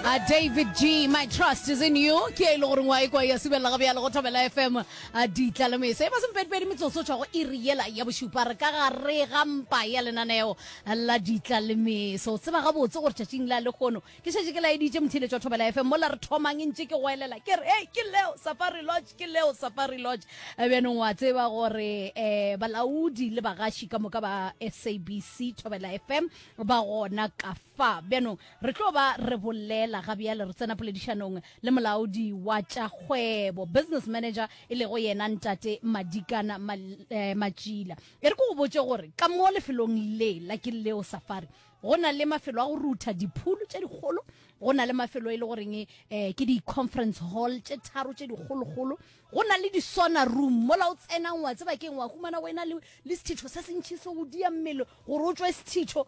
A David G, my trust is in you. Ke e le gore ngwa e kwa ya subelela ga bjalo go Thobela FM. A ditla le mese. E ba sempedipedi metsotso o tšwago iri yela ya bošupa re ka gare ga mpa ya lenaneo la ditla le mese. O tseba gabotse gore tšatšing la lekgono ke šetše ke laeditše mothiletšo wa Thobela FM mola re thomang e ntše ke go elela ke re hey ke leo Safari Lodge ke leo Safari Lodge. E bjanong wa tseba gore eh balaodi le bagaši ka moka ba SABC Thobela FM ba gona ka Fa bjanong re tlo ba re bolela ga bjale re tsena poledišanong le molaodi wa tša kgwebo, business manager, e lego yena Ntate Madikana Ma, eh, Matšila. E re ke go botše gore ka mo lefelong le la Kileo Safari go na le mafelo a go rutha diphulu tše dikgolo, go na le mafelo e le goreng eh, ke di-conference hall tše tharo tše dikgolokgolo, go na le di-sauna room mola o tsenang wa tseba keng wa humana o ena le, le sethitho se sentši se go dia mmele gore o tšwe sethitho.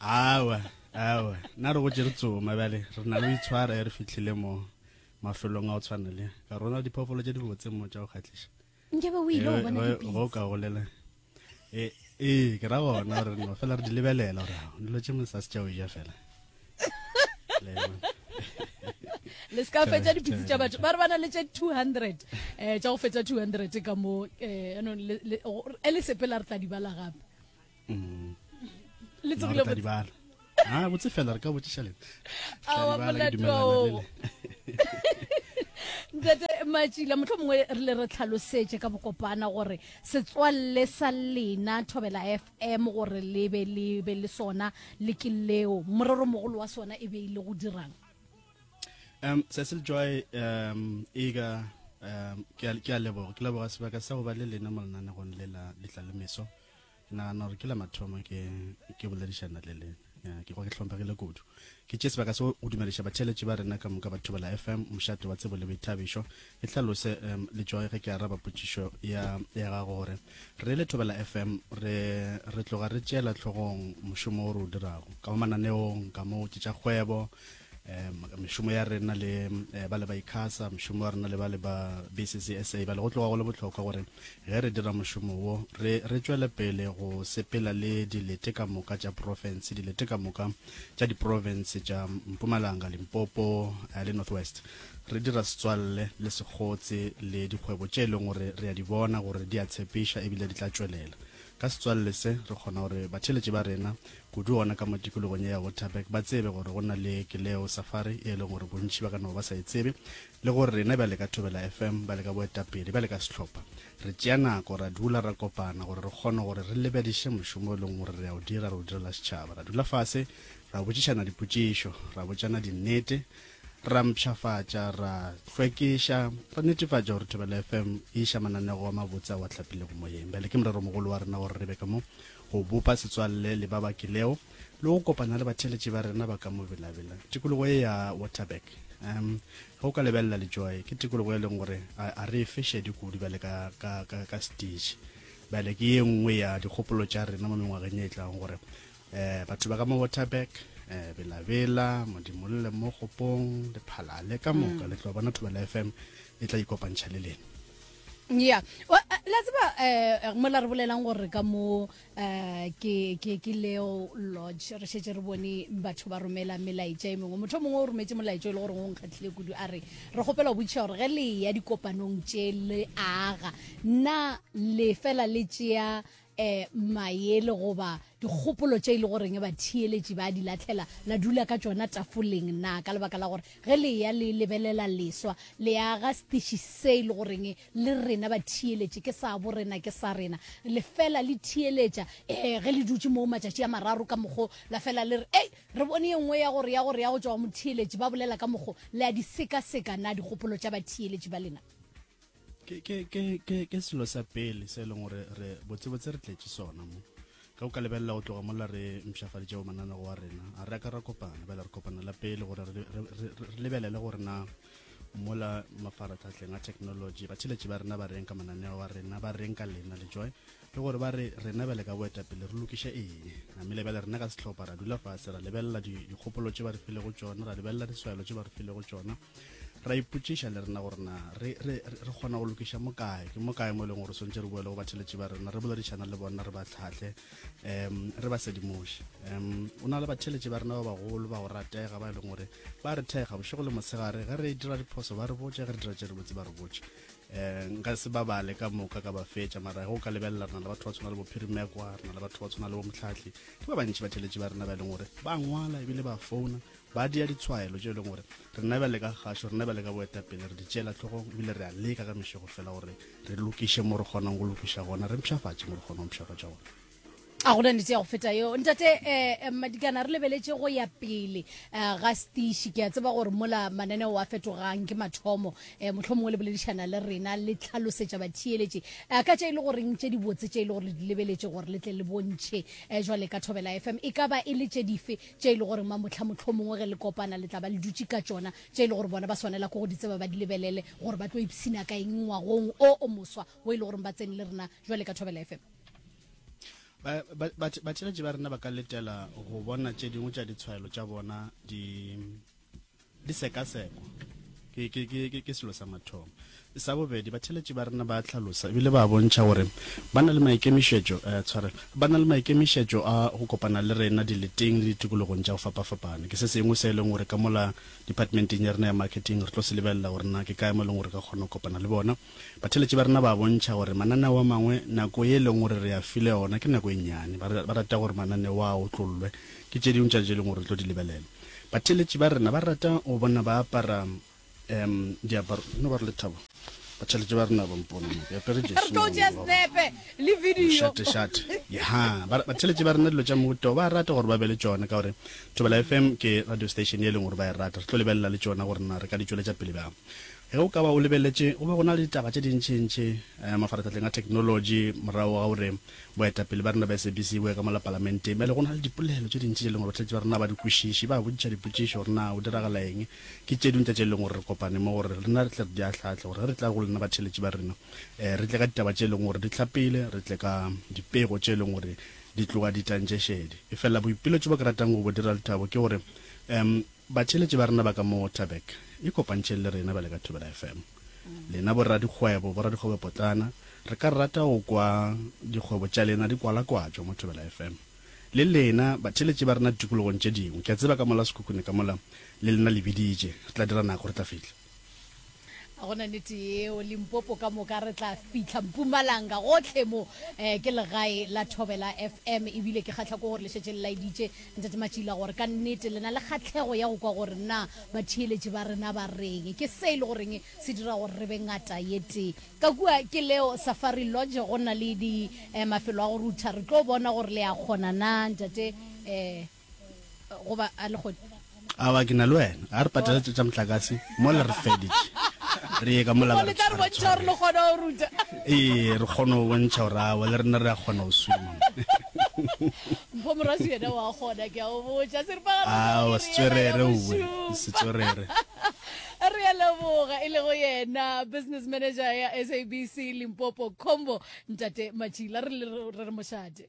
awa awa na re go tše re tsoma bjale re na le go itshwara e re fitlhile mo mafelong a go tshwana le ka rona diphoofolo tše di botse mo tša go kgatlhiša nkabe o ile go bona dipitse go ka golela ee e, ke ra gona gore no fela re di lebelela gore dilo tše mo sa se tša o ja fela le se ka fetsa dipitse tša batho ba re bana le tše 200 um tša go fetsa 200 ka mo um le sepela re tla di bala gape mm. le tsogile botse dibala ah botse fela re ka botšiša le awa molatwaong ntate matšila motlho mongwe re le re tlhalosetse ka bokopana gore setswalle sa lena thobela f m gore le be le be le sona le ke leo morero mogolo wa sona e be e le go dirang um cecil joy um ega um ke a leboga ke leboga sebaka sa go ba le lena molenanegong le la letlalemeso um Ke nagana gore ke la mathomo ke ke boledišana le lena. Ya, ke kwa ke hlomphegile kudu. Ke tše sebaka se go dumediša batheeletši ba rena ka moka ba Thobela FM, Mošate wa Tsebo le Boithabišo. Ke hlalose um, le tšoge ge ke araba potšišo ya, ya gago gore re le Thobela FM re, re tloga re tšeela hlogong mošomo o re o dirago ka mo mananeong, ka mo ke tša kgwebo, um mešomo ya rena le eh, ba le ba ikhasa mešomo wa rena le ba le ba bccsa ba le go tloga go le botlhokwa gore ge re dira mošomo wo re re tšwele pele go sepela le dilete ka moka tša profense dilete ka moka tša diprofense tša mpumalanga limpopo eh, le north west re dira setswalle le sekgotse le dikgwebo tše e leng gore re a di bona gore di a tshepiša ebile di tla tšwelela ka setswalle se re kgona gore batheletši ba rena kudu gona ka mo tikologong ye ya Waterberg, ba tsebe gore go na le Keleo Safari e leng gore bontši ba ka no ba sa e tsebe, le gore rena bjale ka Thobela FM, bjale ka boetapele, bjale ka sehlopha, re tšea nako, ra dula, ra kopana gore re kgone gore re lebediše mošomo e leng gore re a o dira, re o direla setšhaba. Ra dula fase, ra botšišana dipotšišo, ra botšana dinnete, ra mpšhafatša, ra hlwekiša, ra netefatša gore Thobela FM e iša mananego a mabotse a wa tlapilego moyeng. Bjale ke morero mogolo wa rena gore re be ka mo go bopa setswalle le ba ba kilego le go kopana le batheeletši ba rena ba ka mo belabela. Tikologo ye ya Waterberg, um, ge o ka lebelela Lejoe, ke tikologo e leng gore a, a re e fe šedi kudu bjale ka, ka, ka, ka stage. Bjale ke ye nngwe ya dikgopolo tša rena mo mengwageng ye e tlago gore um batho ba ka mo Waterberg um belabela modimolle mo kgopong le phalale ka moka mm. le tlo bona thobela fm e tla ikopantšha le lena ya la tseba um mola re bolelang gore ka mo um ke leo lodge re šetse re bone batho ba romela melaetša e mengwe motho mongwe o rometse molaetša e le gore go nkgatlhile kudu a re re kgopela go botšiša gore ge le ya dikopanong tše le aga nna le fela le tšea um maele goba dikgopolo tše e le goreng ba theeletši ba di latlhela la dula ka tšona tafoleng na ka lebaka la gore ge le ya le lebelela leswa le aga setiši se e le goreng le rena ba theeletši ke sa bo rena ke sa rena le fela le theeletša um ge le dutše moo matšatši a mararo ka mokgo la fela le re ei re bone ye nngwe ya gore ya gore ya go tšwa go motheeletši ba bolela ka mokgo le a di sekaseka na dikgopolo tša batheeletši ba lena ke ke ke ke ke selo sa pele se e leng gore re botsebotse re tletse sona mo ka o ka lebelela go tloga mola re mpšhafaditšego mananego wa rena a re ka ra kopana bela re kopana la pele gore re lebelele gore na mola mafaratlhatlheng a technology batheletši ba rena ba reng ka mananeo wa rena ba reng ka lena le joy le gore ba re rena bele ka boetapele re lokiše eng namele bele rena ka setlhopha ra dula fase ra lebelela dikgopolo tše ba re filego tšona ra lebelela diswaelo tše ba re filego tšona ra ipotšiša le rena gore na re kgona go lokiša mo kae ke mo kae mo e leng gore swantse re boele go batheletši ba rena re boledišana le bona re ba tlhatlhe um re ba sedimoše um o na le batheletši ba rena ba bagolo ba go ratega ba e leng gore ba re thega bošego le mosegare ge re dira diphoso ba re botse ge re dira tše re botse ba re botse um nka se ba bale ka moka ka ba fetša mara go ka lebelela rena le batho ba tshwana le bophirimekwa rena le batho ba tshwana le bomotlhatlhi ke ba bantši batheletši ba rena ba e leng gore ba ngwala ebile ba founa Ba dia ditshwaelo tše e leng gore rena bjale ka kgašo, rena bjale ka boetapele re di tšeela tlhogong ebile re a leka ka mešego fela gore re lokiše mo re kgonang go lokiša gona, re mpšhafatše mo re kgonang go mpšhafatša gona. a gona nete ya go feta yeo ntate um eh, eh, madikana re lebeletše go ya pele um ga setiši ke a tseba gore mola mananeo a fetogang ke mathomo um eh, motlho mongwe le boledišana le rena le tlhalosetša batheeletše um ka tše e le goreng tše dibotse tše e le gore le di lebeletše gore le tle le bontšhe um jwale ka thobela fm e ka ba e le tše dife tše e le gore mamotlha mohlomongwe ge le kopana le tla ba le dutše ka tšona, tše e le gore bona ba swanela ke go di tseba ba di lebelele gore ba tlo ipshina ka eng ngwagong o o moswa wo e le gore ba tsene le rena jwale ka Thobela FM. Ba, ba, ba, batheletši ba rena ba ka letela go bona tše dingwe tša ditshwaelo tša bona di Di sekasekwa ke, ke, ke, ke, ke selo sa mathomo. Sa bobedi, batheletši ba rena ba a hlalosa e bile ba a bontšha gore ba na le maikemišetšo, eh, tshwarelo, ba na le maikemišetšo a go kopana le rena dileteng le ditikologong tša go fapafapana. Ke se sengwe se e leng gore ka mola Diphatmenteng ya rena ya Marketing re tlo se lebelela gore na ke kae mo e leng gore re ka kgona go kopana le bona. Batheeletši ba rena ba bontšha gore mananeo a mangwe nako ye e leng gore re a file ona ke nako e nnyane. Ba ba rata gore mananeo a otlollwe ke tše dingwe tša tše e leng gore re tlo di lebelela. Batheeletši ba rena ba rata go bona ba apara um diaparo. No ba re Lethabo, batheeletši ba rena ba mpona mo ke apere jersey mo go lona, mošate šate. Yeha, ba batheeletši ba rena dilo tša mohuta wo ba a rata gore ba be le tšona ka gore Thobela FM ke radio station ye e leng gore ba e rata. Re tlo lebelela le tšona gore na re ka di tšweletša pele bjang. Ge o ka ba o lebeletše, go be go na le ditaba tše dintšintši mafarahlahleng a theknolotši morago ga gore boetapele bja rena bja SABC bo ye ka mola Palamenteng. Bjale go na le dipolelo tše dintši tše e leng gore bahlatši ba rena ga ba di kwešiše, ba botšiša dipotšišo gore na go diragala eng. Ke tše dingwe tša tše e leng gore re kopane mo gore rena re tle re di ahlaahle gore ge re tla go lena batheeletši ba rena, re tle ka ditaba tše e leng gore di hlapile, re tle ka dipego tše e leng gore di tloga di tantše šedi. Efela boipiletšo bo ke ratang go bo dira, Lethabo, ke gore Batšheletši ba rena ba ka mo Taberg, ikopantšheng le rena bjale ka Thobela FM. Lena boradikgwebo, boradikgwebopotlana, re ka rata go kwa dikgwebo tša lena di kwalakwatšwa mo Thobela FM. Le lena, batšheletši ba rena ditikologong tše dingwe, ke a tseba ka mola sekhukhune ka mola, le lena le biditše, re tla dira nako, re tla fihla. ga gona nete yeo limpopo ka moka re tla fitlha mpumalanga gotlhe mo um ke legae la thobela fm ebile ke kgatlha ko gore le šetse le laeditše ntate matšila gore ka nnete le na le kgatlhego ya go kwa gore na batheeletši ba rena ba reng ke se e le goreng se dira gore re be ngata ye tee ka kua ke leo safari lodge go na le di um mafelo a go rutha re tlo bona gore le ya kgona na ntate um goba a le gone? Awa, ke na le wena. A re patele tša motlakase mola re feditše. Re ye ka mola ba re tshware. Goba le tla re bontšha gore le kgona go ruta. Ee, re kgona go bontšha gore awa le rena re a kgona go swima. Mpho Morwasu yena o a kgona, ke a o botša. Seripagare o Awa, se tswerere uwe, se tswerere. Re a leboga e lego yena business manager ya SABC Limpopo Combo, Ntate Matšila. Re re mošate.